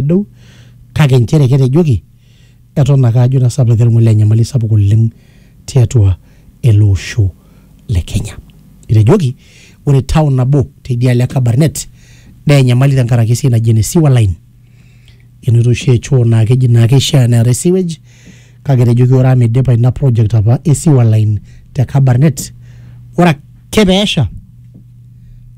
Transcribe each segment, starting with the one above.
nedou kake inchere ketejoki eton ake ajo etasapuka enkiremore naa enyamali sapuk oleng tiatua ele osho le Kenya. Etejoki ore town nabo teidialo e Kabarnet naa enyamali tenkaraki esiai naji ene sewer line enoto oshi e choo naa keji naa keishaa neetae sewage Kake etejoki ore amu eidipa ina project apa e sewer line te Kabarnet, ore ake pee esha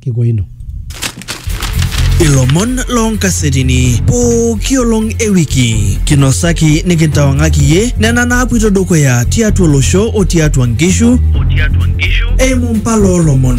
kiko ino. Ilomon loo nkasetini pooki olong e wiki kinosaki nikintawang'aki iyie nena naapuito dukuya tiatua olosho o tiatua nkishu eimu mpala oo lomon.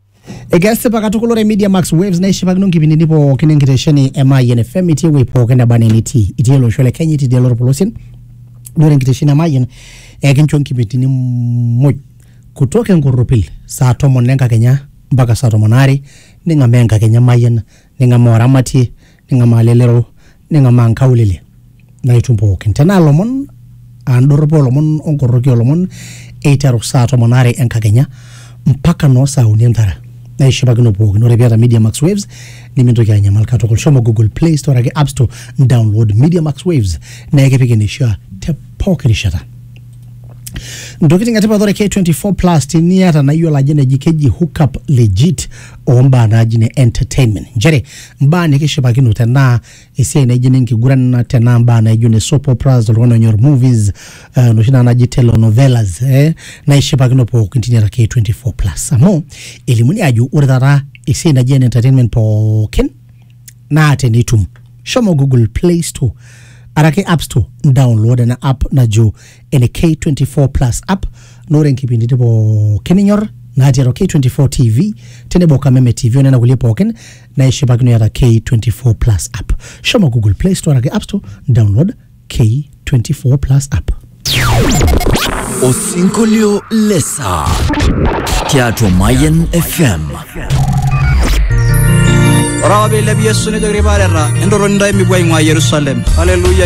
Ekesipa katukul ore Media Max Waves naishipakino nkipindini pookin enkitesheni e Mayian FM itii ewuei pookin neba enaa enitii. Itii ele osho le Kenya, itii idialo orpolosien. Ore enkitesheni e Mayian ekincho nkipindini muj kutoka enkorropil saa tomon enkakenya mpaka saa tomon aare ning'amaa enkakenya e Mayian, ning'amaa oramatie, ning'amaa lelero ning'amaa nkaulele naitum pookin tenaa lomon aa ndorropu olomon onkorroki olomon eiteru saa tomon are enkakenya mpaka noo saa uni entara naishipakino pookin ore piata media max waves nimintoki anyamal katukul shomo google play store ake app store download media max waves naa ekipik eneishaa te pooki rishata ntokitin etipat ore k24 plus teniata nayiolo ajo neji keji hookup legit ombaa naaji ne entertainment nchere mbaa nikishipakino tenaa esiai naijo ene nkiguran tenaa mbaa naijo ne soap operas oltung'ani onyor movies eh, noshi naa naji telenovelas eh, naishipakino pookin tine ake 24 plus amu elimuni ajo ore taata esiai naji ene entertainment pookin naa tenitum shomo google play store araki app store download ena app najo ene K24 Plus app na ore nkipindini pookin ninyor natii atua K24 TV tenebo Kameme TV onena kulie pookin naishipakino iata K24 Plus app. Shomo Google Play Store ake App Store download K24 Plus app. Osinkolio lesa tiatua Mayan FM. Ore apa peilepi Yesu nejoki irpaareta, entotoni intae mipuo aing'ua Yerusalem. Haleluya!